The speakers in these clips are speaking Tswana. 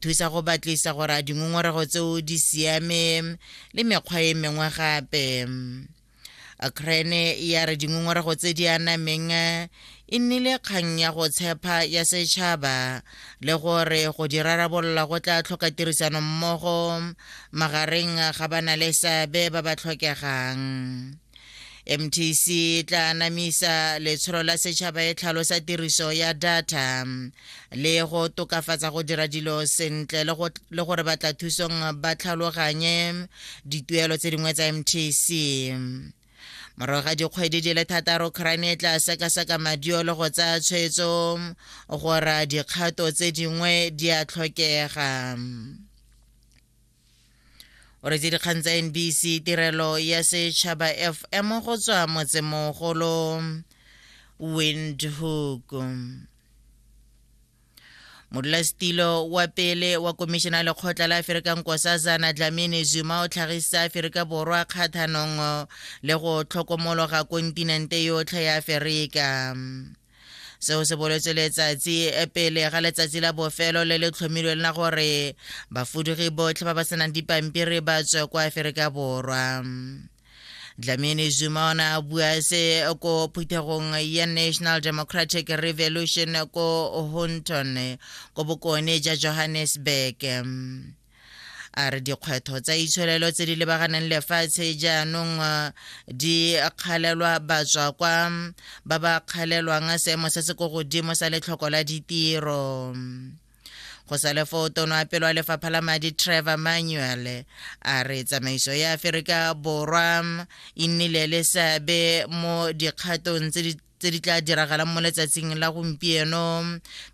Thusa go batlisa gore a dingongorego tseo di siame le mekgwa e mengwe gape. Crane ya re dingongorego tse di anameng e nnile kgang ya go tshepa ya setšhaba le gore go di rarabolola go tla tlhoka tirisano mmogo magareng ga ba na le seabe ba ba tlhokegang mtc e tla anamisa letsholo la setšhaba e tlhalosa tiriso ya data le go tokafatsa go dira dilo sentle le gore batla thusong ba tlhaloganye dituelo tse dingwe tsa mtc morago ga dikgwedi di le thataro crane e tla sekaseka madio le go tsaya tshwetso gore dikgato tse dingwe di a tlhokega o retse dikgang tsa nbc tirelo ya setšhaba fm go tswa motsemogolo windhoek modulasetilo wa pele wa komišene ya lekgotla la aferika nkosazana dlamini zuma o tlhagisa aferika borwa kgathanong le go tlhokomologa kontinente yotlhe ya aferika seo se boletse letsatsi e pele ga letsatsi la bofelo le le tlhomilweng la gore bafudugi botlhe ba ba senang dipampiri ba tswe kwa aferika borwa dlamini zuma o ne a bua se ko phuthegong ya national democratic revolution ko hunton ko bokone ja johannesburg a re dikgwetlho tsa itsholelo tse di lebaganeng lefatshe jaanong uh, di kgalelwa batswa kwa ba ba kgalelwang seemo se se ko godimo sa letlhoko la ditiro go sa le foo tono a pelo a lefapha la madi trevor manuel a re tsamaiso ya aferika borwa e nnile le seabe mo dikgatong tse di tse di tla diragalang mo letsatsing la gompieno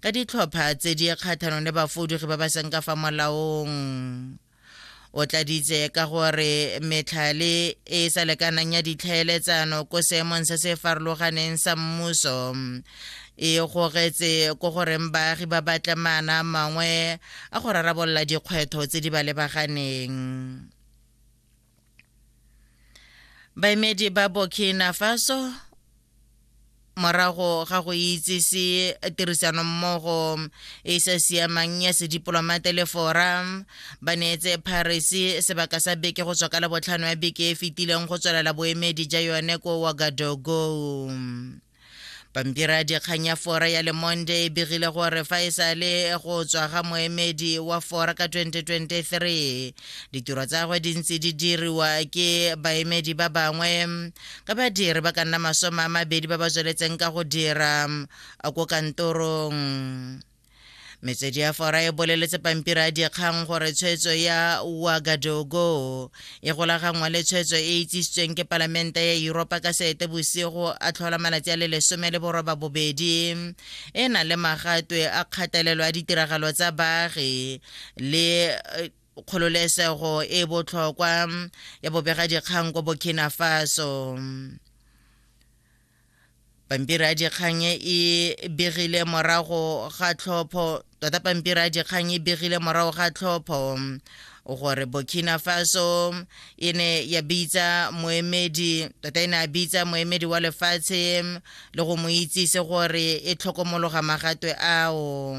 ka ditlhopha tse di kgathanong le bafodugi ba ba seng ka fa molaong o tladitse ka gore metlhale e sa lekanang ya ditlhaeletsano ko seemong se se farologaneng sa mmuso e gogetse ko goreng baagi ba batle maana mangwe a go rarabolola dikgwetlho tse di ba lebaganeng baemedi ba burkina faso morago ga go itsise tirisanommogo e e sa siamang ya sedipolomate le forum ba neetse paris sebaka sa beke go tswa ka labotlhano ya beke e fetileng go tswelela boemedi ja yone ko wagadogo pampiri ya dikgang ya fora ya le monday e begile gore fa e sa le go tswa ga moemedi wa fora ka 2023 ditiro tsa gagwe di ntse di diriwa ke baemedi ba bangwe ka badiri ba ka nna masome a mabedi ba ba tsweletseng ka go dira ko kantorong metswedi ya fora e boleletse pampiri a dikgang gore tshwetso ya wagadogo e golaganngwa le tshwetso e itsisitsweng ke palamente ya europa ka seete bosigo a tlhola malatsi a le lesome le boroba bobedi e na le magatwe a kgatelelo a ditiragalo tsa baagi le eh, kgololesego e botlhokwa ya bobega dikgang ko burkina faso pampiri ya dikgang e e begile morago ga tlhopho tota pampiri ya dikgang e begile morago ga tlhopho gore burkina faso e ne ya bitsa moemedi tota e ne a bitsa moemedi wa lefatshe le go mo itsise gore e tlhokomologa magatwe ao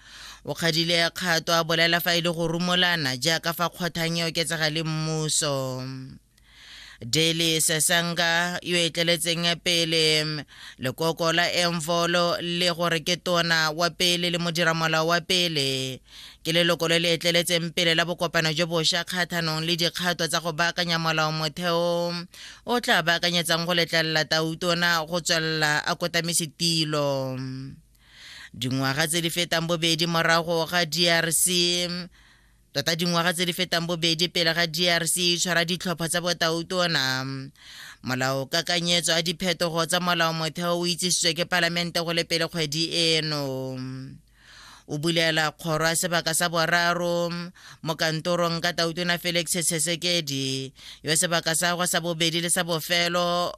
O kgadile kgato a bolela fa e le go rumolana jaaka fa kgothang e oketsega le mmuso. Daily Sesanga yo e tleletseng pele lekoko la Emvolo le gore ke tona wa pele le modiramolao wa pele ke leloko le le etleletseng pele la bokopano jo bošwa kgathanong le dikgato tsa go baakanya molao motheo o tla baakanyetsang go letlelela tautona go tswelela a kotamise tilo dingwaga tse di fetang bobedi morago ga drc tota dingwaga tse di fetang bobedi pele ga drc e tshwara ditlhopha tsa botautona molao kakanyetso a diphetogo tsa molao motheo o itsisitswe ke palamente go le pele kgwedi eno o bulela kgoro ya sebaka sa boraro mo kantorong ka tautona felix sesekedi yo sebaka sa gwa sa bobedi le sa bofelo